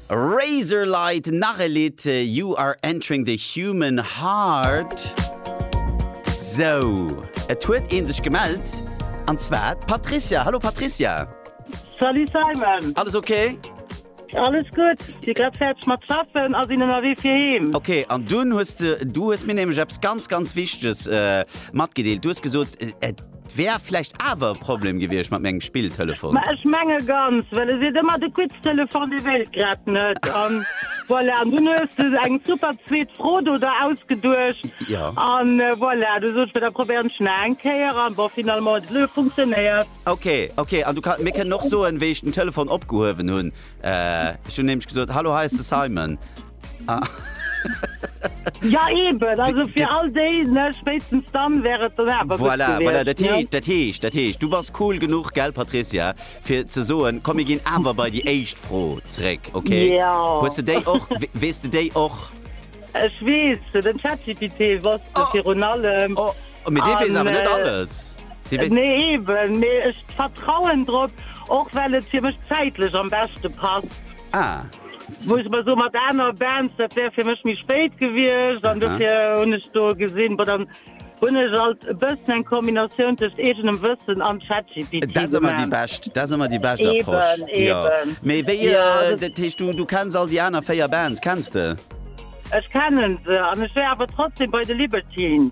Razorlight, nach e Lidd, You are entering the human heart. Sou, et huet ee sech gemellt, an zwar d'Patricia. Hallo Patricia. Salut Simon. Alles ok? Alles gutt, si grad fäerdeg mat schaffen a sinn ënnerwee fir heem. Ok, an dunn hues de, du hues mir nämlech eppes ganz, ganz Wichteges matgedeelt. Du hues gesot, Wär vläicht awer e Problem gewiescht mat mengem Spilltelefon. Mä ech menge ganz, well e seet ëmmer, de Quiz-Telefon, dee wéilt grad net. An voilà, an dunn hues de eng super zweet Fro do der ausgeduecht. Jo. An voilà, du sots mir, da probéieren ech nach eng Kéier, an bon, finalement huet et elo funktionéiert. Ok, ok, an du mir kënnen och soen, wéi ech den Telefon opgehuewen hunn. Ech hunn nämlech gesot, Hallo, hei ass de Simon. Ah. Ja eben, also fir all déi ne spéitstens dann wär et dann awer gutt Voilà, voilà, dat gewiescht, ne? heescht, dat heescht, dat heescht, du bass cool genuch, gell, Patricia, fir ze soen, komm, mir ginn awer bei déi éischt Fro zréck, okay? Ja. Hues de déi och, we- weess de déi och? Ech weess, den ChatGPT wosst Oh. virun allem. Oh, mee dee weess An, awer net äh, alles. Dee weess, Nee eben, mee ech vertrauen drop, och well et fir mech zäitlech am beschte passt. Ah. Wou ech mer soen, mat aner Bands, dat wär fir mech méi spéit gewiescht. An dofir hunn ech do gesinn, bon, dann hunn ech alt e bëssen eng Kombinatioun tëscht eegenem Wëssen an ChatGPT. Dat ass ëmmer déi bescht, dat ass ëmmer déi bescht Approche. Eben, eben. Jo. Mee wéi, dat heescht, du, du kenns all déi aner 4 Bands, kenns de? Ech kennen se, an ech wär awer trotzdem bei de Libertines.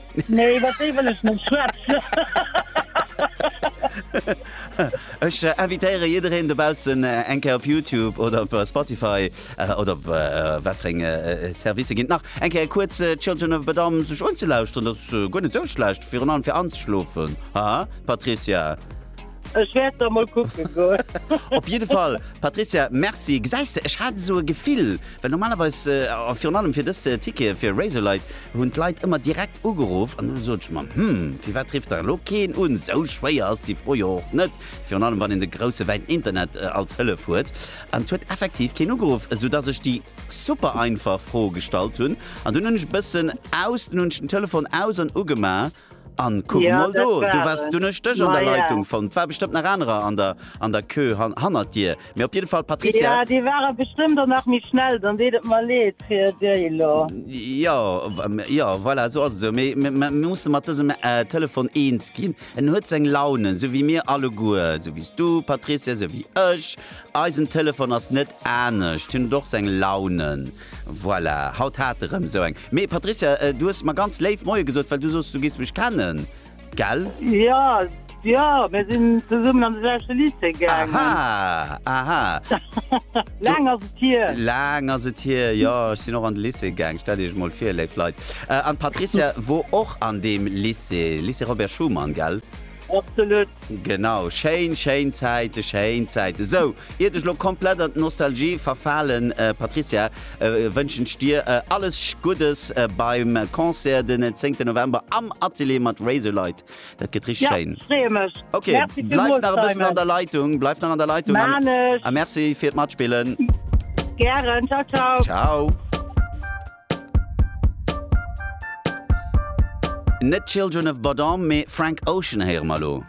Nee, iwwer déi wëll ech net schwätzen. Ech invitéiere jiddereen dobaussen eng Kéier op Youtube oder op Spotify oder op wat fir eng Servicer ginn et nach, eng Kéier kuerz Children of Bodom sech unzelauschteren. Dat ass guer net esou schlecht, virun allem fir anzeschlofen, haa Patricia? Ech wäert da mol kucken goen. Op jidde Fall, Patrizia, Merci. Gesäis de, ech hat esou e Gefill, well normalerweis, a virun allem fir dës Tickete fir Razorlight, hunn d'Leit ëmmer direkt ugeruff an elo sot ech mer, hm, firwat rifft da elo keen un? Esou schwéier ass déi Fro jo och net, virun allem wann een de grousse wäiten Internet als Hëllef huet. An et huet effektiv keen ugeruff, esou dass ech déi super einfach Fro gestallt hunn. An dunn hunn ech e bëssen aus, dunn hunn ech den Telefon aus an ugemaach. Anne, kuck emol do, du waars dunn, ech dech an der Leitung fonnt. War bestëmmt nach anerer an der an der Queue hannert dir, mee op jidde Fall d'Patricia. Jo, déi ware bestëmmt och nach méi schnell, dann deet et mer leed fir déi elo. Jo, jo, voilà, esou ass et esou, mee mir musse mat dësem Telefon eens ginn, en huet seng Launen, esou wéi mir alleguer, esou wéi s du, Patricia, esou wéi ech, eisen Telefon ass net anescht, hien huet och seng Launen. Voilà, haut hat de rem sou eng. Mee Patricia, du hues mer ganz léif Moie gesot, well du sos du giss mech kennen, gell? Ja, ja, mir sin zesummen an de selwechte Lycée gaangen. Aha, aha. Laang ass et hier. Laang ass et hier, jo. Ech sin och an de Lycée gaang, stellt iech emol vir, léif Leit. An d'Patricia wor och an deem Lycée, Lycée Robert Schuman, gell? Absolut! Genau, schéin, schéin Zäiten, schéin Zäiten. Esou, iert ech elo komplett an d'Nostalgie verfalen, Patricia, wënschen ech dir alles Guddes beim Concert den 10 November am Atelier mat Razorlight. Dat gëtt richteg schéin. Ja, freeë mech. Ok, bleif nach e bëssen an der Leitung, bleif nach an der Leitung. Maan ech. A merci fir d'Matspillen. Gären, ciao, ciao. Ciao. Net Children of Bodom, mee Frank Ocean héiere mer elo.